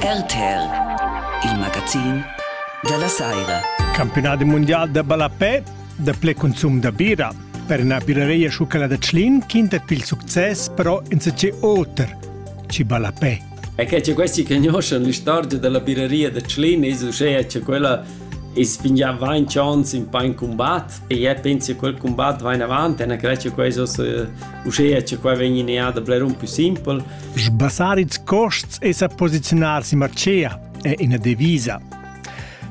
RTL, il magazin della Saira. Campionat mondial da ballapè da ple consum da bira. Per una birareia schucala da Tschlin quintet pil succes però in se oter, ci ballapè. E che c'è questi che conoscono l'istorgia della birareia da Tschlin e uschè c'è quella e spingiamo va in chance in pa in combat e je penso che quel combat va in avanti e una crecia quasi uschè c'è qua vengono da blare un più simple Sbassar ils costs e sa posiziunar sin martgea è ina devisa.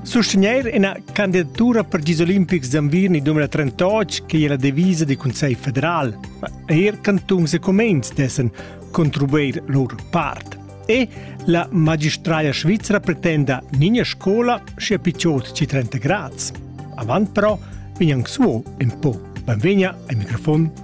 Sustegnair ina candidatura per gis olimpics d'enviern 2038 che è la devisa del Consiglio federal. Er cantuns e comens dessen contribuir lur part. E la magistraglia svizzera pretenda nina scola sia picciot ci 30 grads. Avant però vegnan suo un po. Benvegna ai microfon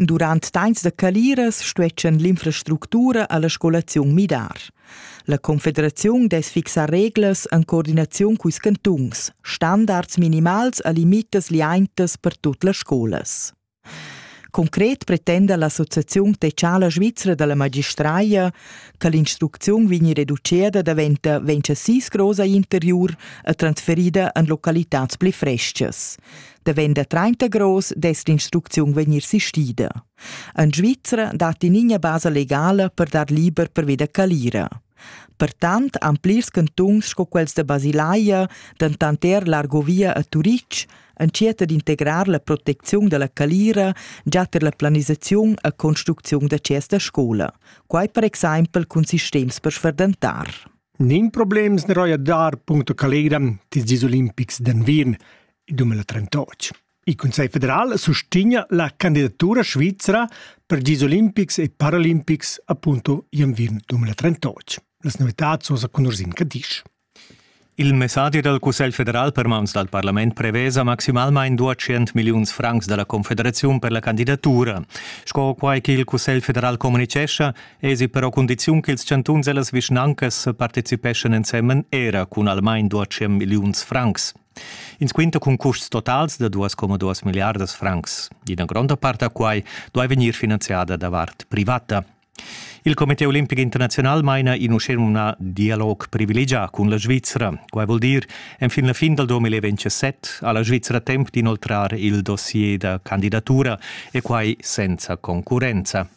Durant temps da caliras stueschan l'infrastructura alla scolaziun midar. La Confederaziun dess fixar reglas en coordinaziun culs cantuns, standards minimals a limitas liaintas per tut las scolas. Concret pretenda l'Associazione Teciala Svizra dalla magistraia che l'instrucziun vegni reducida daventa 26 grosa interiur e transferida en localitads pli frestgas. da venda 30 gross dess l'instrucziun vegnir sistida. En Svizzera datti nina basa legala per dar liber perveda calira. Pertant han plirs cantuns sco quels da Basilaia, dentant er l'Argovia a Turitg, entschiet d'integrar la protecziun dalla calira già per la planisaziun e construcziun da chers da scola, quai per exempel cun sistems per sferdentar. Nin problems ne roia dar punto calira tis dis olimpics d'Anvin dumela trentotg. Il Cussegl federal sustegna la candidatura svizra per gis olimpics e paralimpics appunto i enviern 2038. Las novitads sono con Ursin Cadisch. Il messadi dal Cussegl federal per mans dal parlament prevesa maximalmain 200 milliuns francs da la Confederaziun per la candidatura. Sco quai ch'il Cussegl federal communicescha, esi però condiziun ch'ils chantuns e las vischnancas participeschan ensemen era cun almain 200 milliuns francs. Ins quinta cun custs totals da 2,2 milliardas francs. Ina gronda part da quai duai vegnir finanziada da vart privata. Il Comité olimpic internaziunal maina in uschenumnà dialog privilegià cun la Svizra. Quai vul dir, enfin la fin dal 2027 ha la Svizra temp d'inoltrar il dossier da candidatura e quai senza concurrenza.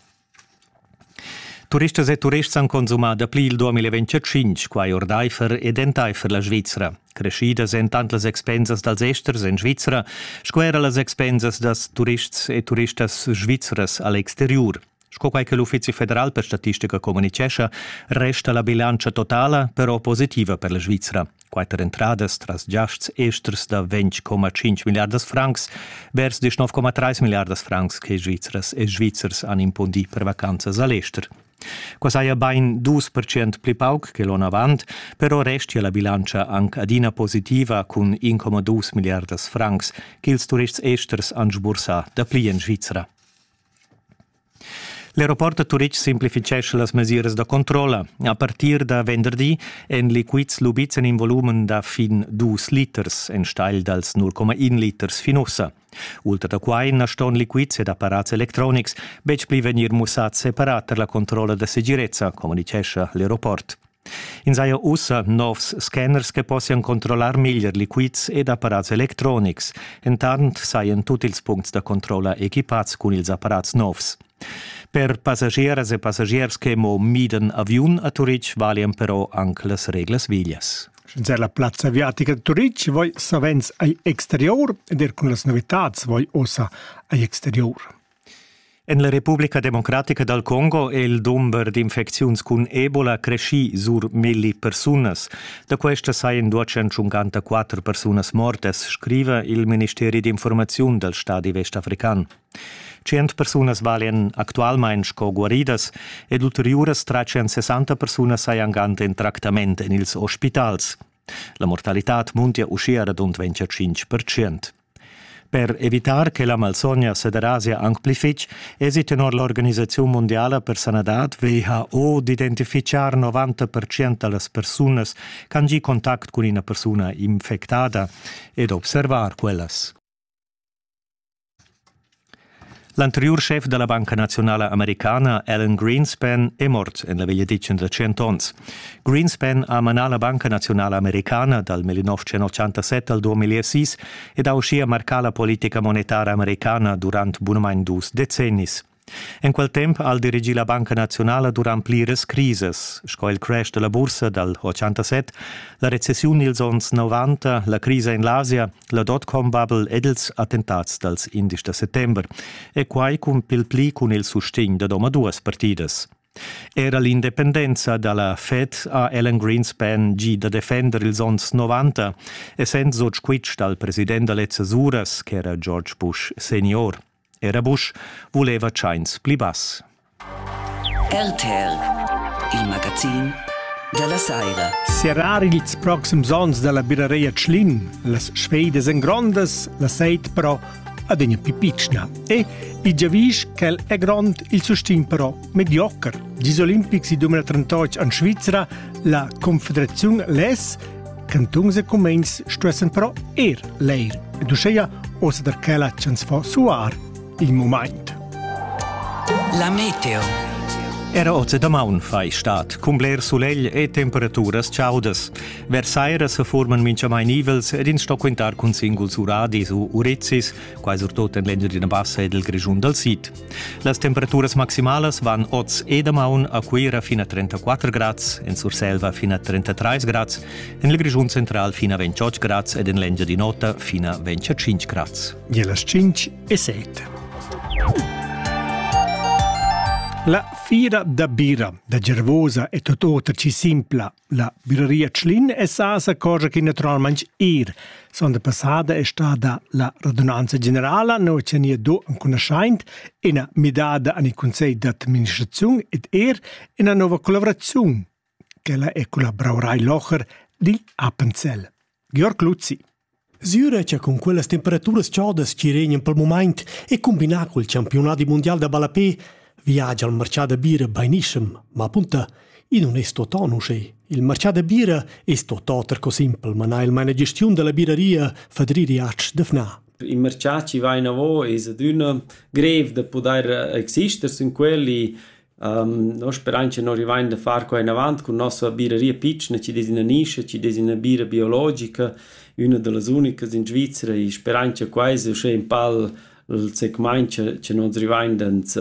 Turistas e turists han consumà dapli il 2025 quai ordaifer ed entaifer la Svizra. Creschidas èn tant las expensas dals esters en Svizra sco era las expensas da turists e turistas svizras a l'exteriur. Sco quai che l'Uffizi federal per statistica communitgescha, resta la bilantscha totala però positiva per la Svizra. Quatter entradas tras giasts esters da 20,5 milliardas francs vers die 9,3 milliardas francs che Svizzers e Svizzers han impundì per vacanzas a l'ester. Qua saja bain 2% pli pauc che l'onn avant, però restia la bilantscha anc adina positiva cun 1,2 milliardas francs ch'ils turists esters han sbursà dapli en Svizra. L'aeroport da Turitg simplifitgescha las mesiras da controlla. A partir da venderdi èn liquids lubids en in volumen da fin dus liters, enstagl dals 0,1 liters fin ussa. Ultra da quai na ston liquids ed apparats electronics betg pli vegnir mussads separat tar la controlla da segirezza, communitgescha l'aeroport. Ins haja ussa novs scanners che possian controllar meglier liquids ed apparats electronics. Entant sajan tut ils puncts da controlla equipads cun ils apparats novs. Per passagiers e passagiers che mo midan aviun a Turitg valian però anc las reglas veglias. Sch'ins la plazza aviatica da Turitg voi savens ai exterior ed er cun las novitads voi ossa ai exterior. En la Republica democratica dal Congo è il dumber d'infecziuns cun Ebola creschì sur milli persunas. Da questa sajan duas 154 persunas mortas, scriva il Ministeri d'informaziun dal stadi westafrican. Tschient persunas valian actualmain sco guaridas ed ulteriuras 360 persunas sajan gant in tractament en ils ospitals. La mortalitad muntia uschia radund 25 percent. Per evitar che la malsogna sederasia anc pli fitg, èsi tenor l'organisaziun mundiala per sanadad WHO d'identifitgar 90% da las persunas ch'han gì contact cun ina persuna infectada e d'observar quellas. L'anteriur schef da la Banca naziunala americana Alan Greenspan è mort en la vegliadetgna da tschient onns. Greenspan ha manà la Banca naziunala americana dal 1987 al 2006 ed ha uschia marcà la politica monetara americana durant bunamain dus decennis. En quel temp ha el dirigì la Banca naziunala durant pliras crisas, sco il crash da la bursa dal 87, la recessiun dils onns 90, la crisa en l'Asia La dotcom vabel ed ils attentats dals indisch da settember, e quai cun pil pli cun il sustegn da domaduas partidas. Era l'independenza da la Fed ha Alan Greenspan gi da defender ils onns 90, essend sot squitsch dal president da lezzas uras, ch'era George Bush senior. Era buc vuleva tscheins pli bass. RTL, il magazin della saira. Serrar ils proxims onns dalla birareia Tschlin, las Schweides en grondas, la seit però adegna più piccina e il giavisch ch'el è grond il sustin però mediocher. Gis olimpics 2038 en Svizra, la Confederaziun Les Cantuns e cumegns stuessen però er leir ed uscheia ossa der quella ch'ans fo suar il mumaint. La meteo. Era oz da maun fai stat, cun bler sulegl e temperaturas chaudas. Versaira se forman minchamain ivels ed ins sto quintar cun singuls uradis u urezis, quai surtot en l'Engiadina Bassa ed il Grischun dal Sid. Las temperaturas maximalas van oz e damaun a Cuira fin a 34 grads, en Surselva fin a 33 grads, en il Grischun central fin a 28 grads ed en l'Engiadin'Ota fin a 25 grads. E las 5 e 7. La fira da bira da Gervosa e Totota ci simpla La Bürgeria Tschlin es sa s'accorgia chi natüralmaing eir sonda passada es stada la radunanza generala, no cha nia do ancunaschaint üna midada an il cunsegl d'administraziun ed eir üna nouva collavraziun. Quella è cun la Brauerei Locher dil Appenzell. Georg Luzzi Sura cha cun quellas temperaturas chodas chi regnan pel mumaint e cumbinà cul champiunadi mundial da ballapè viagia il marchà da bira bainischem, ma apunta, i nun es tuottà uschè. Il marchà da bira es tuottà oter co simpel, ma na il maina gestiun da la biraria Fadri Riatsch d'Fnà. Il marchà chi va inavo es adüna greiv da pudair exister sün quel Noi sperain cha no rivain da far quai inavant cun nossa biraria pitschna chi dess üna nischa, chi dess üna bira biologica, üna da las unicas in Svizra e sperain cha quai es uschè ün pal il segmaint cha cha no's rivain d'ans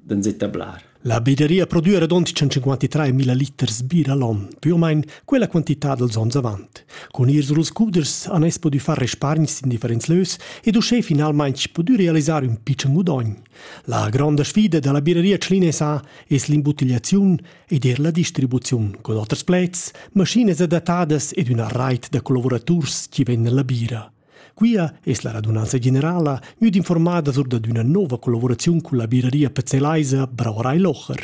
d'ans etablar. La biraria produa radund 153 mila liters bira l'on, più o meno quella quantità dels ons avant. Cun ir suls cuders han ins pudü far respargns in differents lös ed uschè finalmaing pudü realisar ün pitschen gudogn. La gronda sfida dalla birreria Tschlinesa es l'imbuttigliaziun ed eir la distribuziun cun oters pleds, maschinas adattadas ed üna rait da collavuraturs chi vegnan alla bira. Quia es la radunanza generala gnüda informada sur dad üna nouva collaboraziun culla birreria pezzelaisa Brauerei Locher.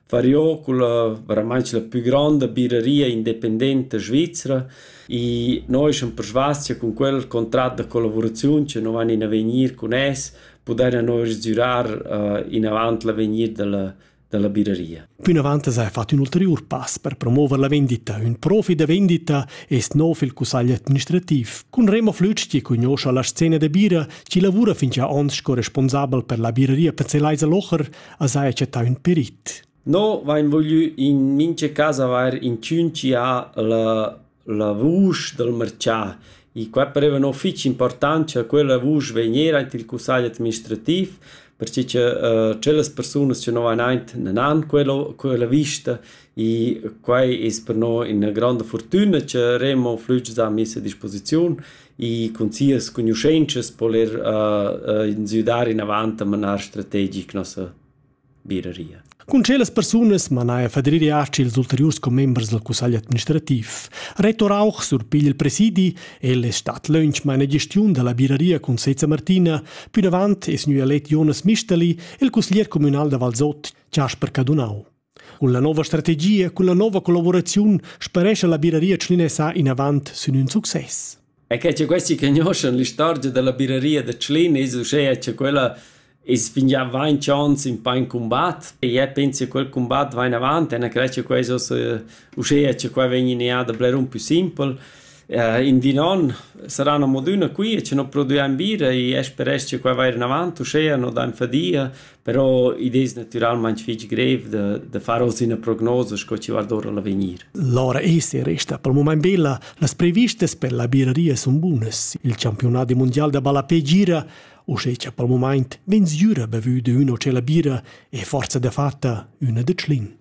Variò culla vairamaing la pü gronda biraria independenta svizra. I no eschan persvas cha cun quel contrat da collavuraziun cha no van in avegnir cun es pudaina no sgürar inavant l'avegnir da la da la biraria. Plinavant s'ha fat ün ulteriur pass per promouver la vendita. Ün profi da vendita es no fil cussagl administrativ. Cun Remo Flütsch chi cugnuoscha la scena da bira, chi lavura fin già ons sco responsabel per la biraria Pezelaisa Locher, as haja chattà ün perit. No vain voglü in mincha casa avair inchün chi ha la, la vusch dal marchà. E qua pareva no fich important cha quella vusch vegniera aint il cussagl administrativ perche che uh, tschellas persunas che no van aint nan han quella, quella vista e quai es per no ina granda fortuna che Remo flüg a messa a disposiziun e cun sias cugnuschentschas po'l ir insüdar inavant a manar strategic nossa biraria. Cun tschellas persunas manaja Fadri Arci ils ulteriurs commembers dal cussagl administrativ. Reto Rauch surpiglia il presidi, el es stat lönch maina gestiun da la biraria cun Seza Martina, pünavant es gnü elet Jonas Misteli, il cussglier cumünal da Valsot, Chasper Cadunau. Cun la nova strategia e cun la nova collavuraziun sparescha la biraria tschlinesa inavant sin ün success. E che che questi conoscono l'istorgia della biraria de Tschlin es uschè che quella es fingià vain chance in pa in combat e je penso che quel combat va in avanti e credo che questo uschè che qua vegni in da bler un più simpel eh, in di non saranno moduna qui e ci non produciamo birra e speresch che qua va in avanti uschè no da fadia Però id es natüralmaing fich grev da da far hoz üna prognosa sco chi vard our a l'avegnir. L'aura esti e resta pel mumaint bella. Las previstas per la birreria sun bunas. Il campiunat mundial da ballapè gira uschè cha pel mumaint vegn sgüra bevü d'üna o tschella bira e forsa dafatta üna da Tschlin.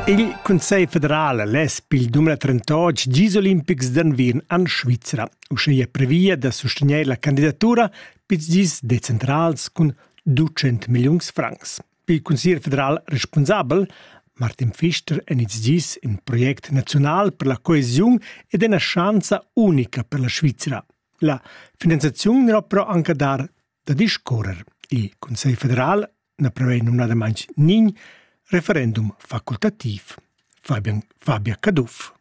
Il Cussegl federal less pil dum la trentotg gis olimpics d'enviern en Svizra. Uschia previa da sustegnair la candidatura pizs gis decentrals cun 200 milliuns francs. Il consiglier federal responsabel Martin Pfister en ils dis in project naziunal per la coesiun ed ina schanza unica per la Svizra. La finanziaziun n'era però anche dar da discorrer. Il Consiglio federal na prevei numnadamain nign referendum facultativ. Fabian, Fabia Caduff.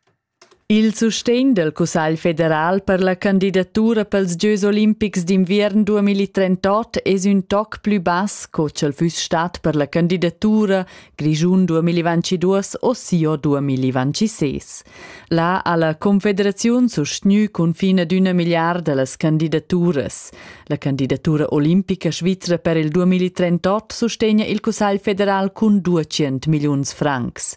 Il sustegn dal Cussagl federal per la candidatura pels gieus olimpics d'inviern 2038 es ün toc plü bass co ch'el füss stat per la candidatura Grischun 2022 o sio 2026. Là ha la Confederaziun sustgnü cunfin ad üna milliarda las candidaturas. La candidatura olimpica svizra per il 2038 sustegna il Cussagl federal cun 200 milliuns francs.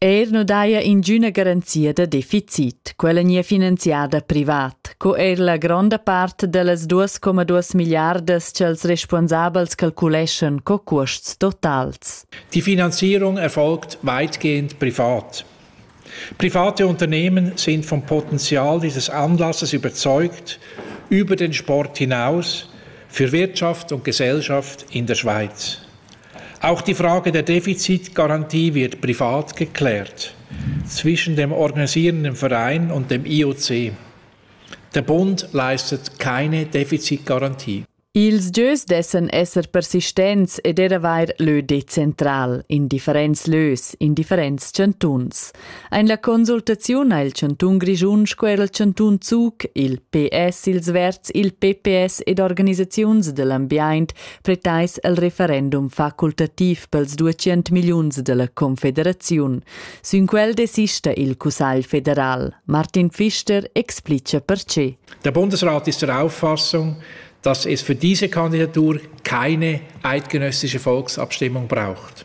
Er nu daja ingüna garanzia da deficit, quella gnir finanziada privat, co eir la gronda part da las 2,2 milliardas cha'ls respuonsabels calculeschan co cuosts totals. Die Finanzierung erfolgt weitgehend privat. Private Unternehmen sind vom Potenzial dieses Anlasses überzeugt, über den Sport hinaus, für Wirtschaft und Gesellschaft in der Schweiz. Auch die Frage der Defizitgarantie wird privat geklärt zwischen dem organisierenden Verein und dem IOC. Der Bund leistet keine Defizitgarantie. Ils gieus dessen esser persistents ed er avair lö decentral in differents lös, in differents chantuns. Ein la consultaziun ha il chantun Grischun sco era il chantun Zug, il PS, ils Verds, il PPS ed organisaziuns dell'ambient pretais el referendum facultativ pels 200 milliuns della Confederaziun. Sün quel desista il Cussagl federal. Martin Pfister explica perché. Der Bundesrat ist der Auffassung, dass es für diese Kandidatur keine eidgenössische Volksabstimmung braucht.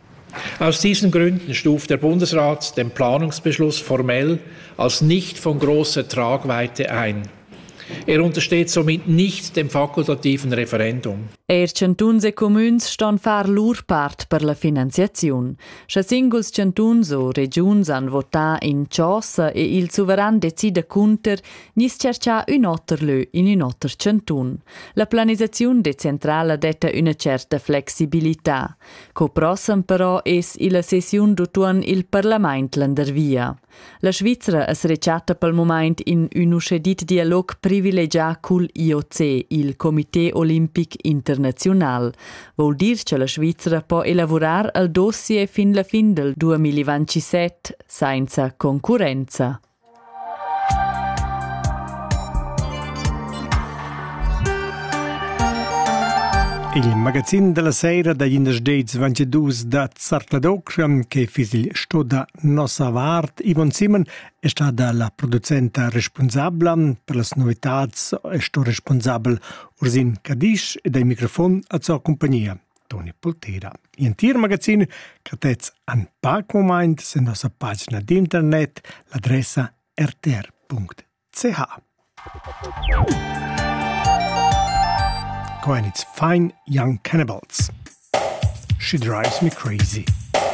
Aus diesen Gründen stuft der Bundesrat den Planungsbeschluss formell als nicht von großer Tragweite ein. Er untersteht somit nicht dem fakultativen Referendum. Er chantuns e comüns ston far lur part per la finanziaziun. Sche singuls chantuns o regiuns han votà in chosa e il suveran decida cunter, nis cerchà ün oter lö in ün oter chantun. La planisaziun decentrala detta üna certa flexibilità. Co prossem però es illa sessiun d'utuon il parlamaint landervia. La Svizra es rechatta pel mumaint in ün uschè dit dialog privilegià cul IOC, il Comité olimpic internaziunal. Voul dir cha la Svizra po elavurar al dossier fin la fin del 2027 sainza concurrenza. Il magazin della sera da Jinders Ventedus da Zartladokschan che fiss il sto da nossa vart Ivan Simon è stata la producenta responsabla per las novitads e sto responsabel Ursin Cadisch ed ai microfon a sua compagnia. Toni Pultera. L'entir magazin catets an pac moment sen nossa pagina d'internet, l'adressa rtr.ch. Coenitz Fine Young Cannibals. She drives me crazy.